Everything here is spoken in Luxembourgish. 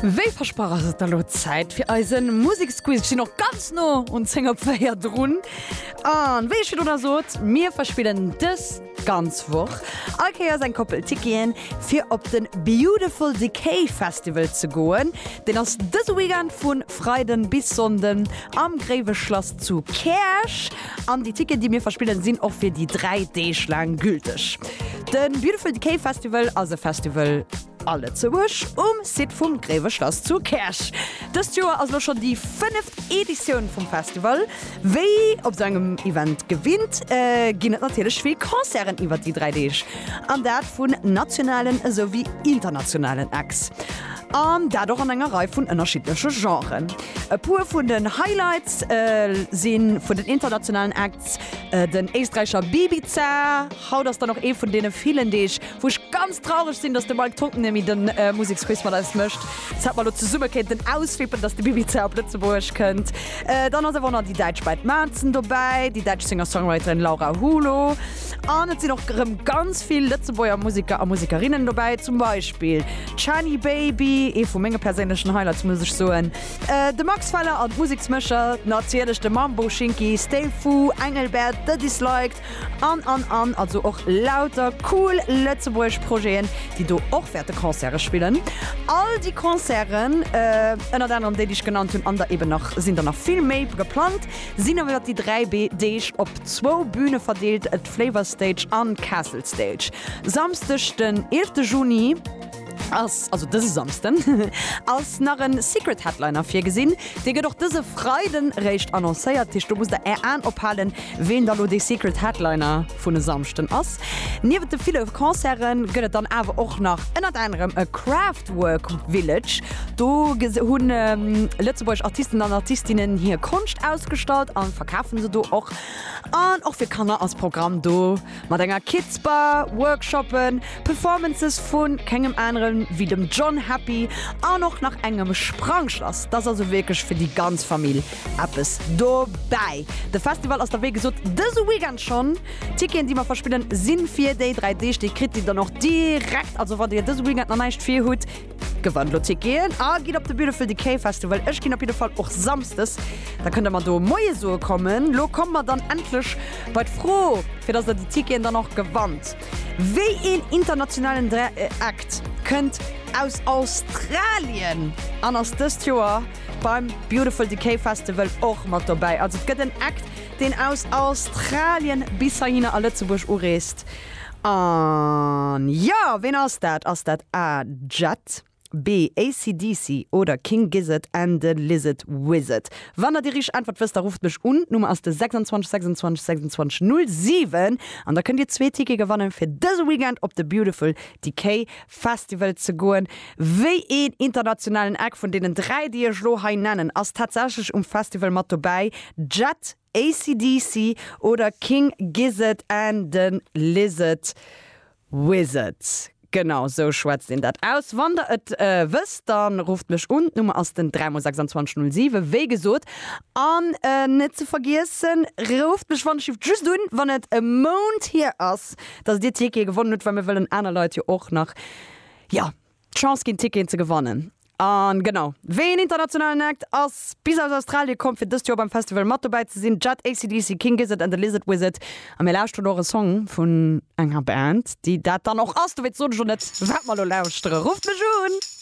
Wéi versprach ass et elo Zäit fir eise Museksquiz. Ech sinn och ganz no un 10 op 4 drun. An wéi ech virdu nach sot, mir verspillen dës ganz Woch all Kéiers eng Koppel Ticketen, fir op de Beautiful Decay Festival ze goen. Deen ass dëse Weekend vu Freiden bis Sonnden am Gréiweschlass zu Käerch. An déi Ticketen, déi mir verspillen, sinn och fir déi dräi Deeg laang gülteg. De Beautiful Decay Festival ass e Festival a Lëtzebuerg um Site vum Gréiweschlass zu Käerch. Dëst Joer ass elo schonn déi fënneft Editioun vum Festival. Wéi op esou engem Event gewinnt, ginn et natierlech vill Concerten iwwer déi dräi Deeg, an dat vun nationalen esouwéi internationalen Acts. An dat och an enger Rei vun ënnerschiddleche Genren. E puer vun den Highlights si vun den internationalen Acts den Éisträicher Bibiza. Haut ass dann och ee vun deene villen Deeg, wou ech ganz traureg sinn, datt de Mike Tontonemi de Museksquiz mat eis mécht. Dass hätt mer elo zesumme kéinten auswippen, datt de Bibiza op Lëtzebuerg kënnt. Dann ass awer och nach déi däitsch Band Matzen dobäi, déi däitsch Singer-Songwriterin Laura Hulo. An et sinn och erëm ganz vill Lëtzebuerger Museker a Musekerinnen dobäi, zum Beispill Chani Baby, ee vu menge perséinlechen Highlights muss ech soen. De Max Feller an d'Museksmécher, natierlech de Mambo Shinki, Stay Fu, Engelbert, The Disliked an an an. Also och lauter cool lëtzebuergesch Projeten, déi do och wäerte Concerte spillen. All déi Concerten, ënnert anerem déi, déi ech genannt hunn, an der eben nach sinn der nach vill méi geplangt, sinn iwwer déi dräi Deeg op zwou Büne verdeelt, d'Flavor Stage an d'Castle Stage. Samsdeg den 11 Juni ass, also dëse Samsden, ass nach en Secret Headliner virgesinn. Dee gëtt och dëse Freiden eréischt annoncéiert. Dat heescht, do musst der Är Aen ophalen, ween da lo dee Secret Headliner vun e Samschden ass. Niewent de ville Concerte gëtt et dann awer och nach ënnert anerem e Craftwork Village. Do hu Lëtzebuerg Artisten an Artistinnen hir Konscht ausgestallt a verkafe se do och. An och fir Kanner ass Programm do. Mat enger Kids Bar, Workshoppen, Performances vu kengem aneren ewéi dem John Happy an och nach engem Sprangschlass, dass also wierklech fir déi ganz Famill eppes dobäi. De Festival ass da wéi gesot dëse Weekend schonn. D'Ticketen déi mer verspillen sinn fir déi 3 Deeg. Déi kritt dir dann och direkt, also wann dir dëse Weekend nach näischt vir hutt, Gewann elo Ticketen a gitt op de Beautiful Decay Festival. Ech ginn op jidde Fall och samsdes. Da kënnt der mer do Moie soe kommen. Elo komme mer dann endlech bei d'Fro, fir dass der déi Ticketen dann och gewannt, Wéi een internationalen Dra Act kënnt aus Australien an ass dëst Joer beim Beautiful Decay Festival och mat dobäi? Also et gëtt en Act, deen aus Australien bis heihinner a Lëtzebuerg ureest. An jo, ween ass dat? Ass dat A, Jet, B, AC/DC oder King Gizzard and the Lizard Wizard? Wann der déi richteg Äntwert wësst, da rufft mech un. D'Nummer ass de 26 26 26 07 an da kënnt dir zwee Tickete gewannen, fir dëse Weekend op de Beautiful Decay Festival ze goen. Wéi een internationalen Act vun deenen dräi, déi ech elo hei nennen, ass tatsächlech um Festival mat dobäi? Jet, AC/DC oder King Gizzard and the Lizard Wizard, genau esou schwätzt een dat aus. Wann der et wësst, da rufft mech un, d'Nummer ass den 3 mol 26 07, wéi gesot. An net ze vergiessen, rufft mech wannechhieft just un, wann et e Mount hier ass, dass dir d'Tickete gewonnen hutt, well mir wëllen aner Leit jo och nach, jo, Chance ginn Ticketen ze gewannen an genau wéi een internationalen Act ass bis aus Australie komm fir dëst Joer beim Festival mat dobäi ze sinn, Jet, AC/DC, King Gizzard and the Lizard Wizard a mir lauschteren och e Song vun enger Band déi dat dann och ass, dowéinst sot ech och net wat mer elo lauschteren. Rufft mech un!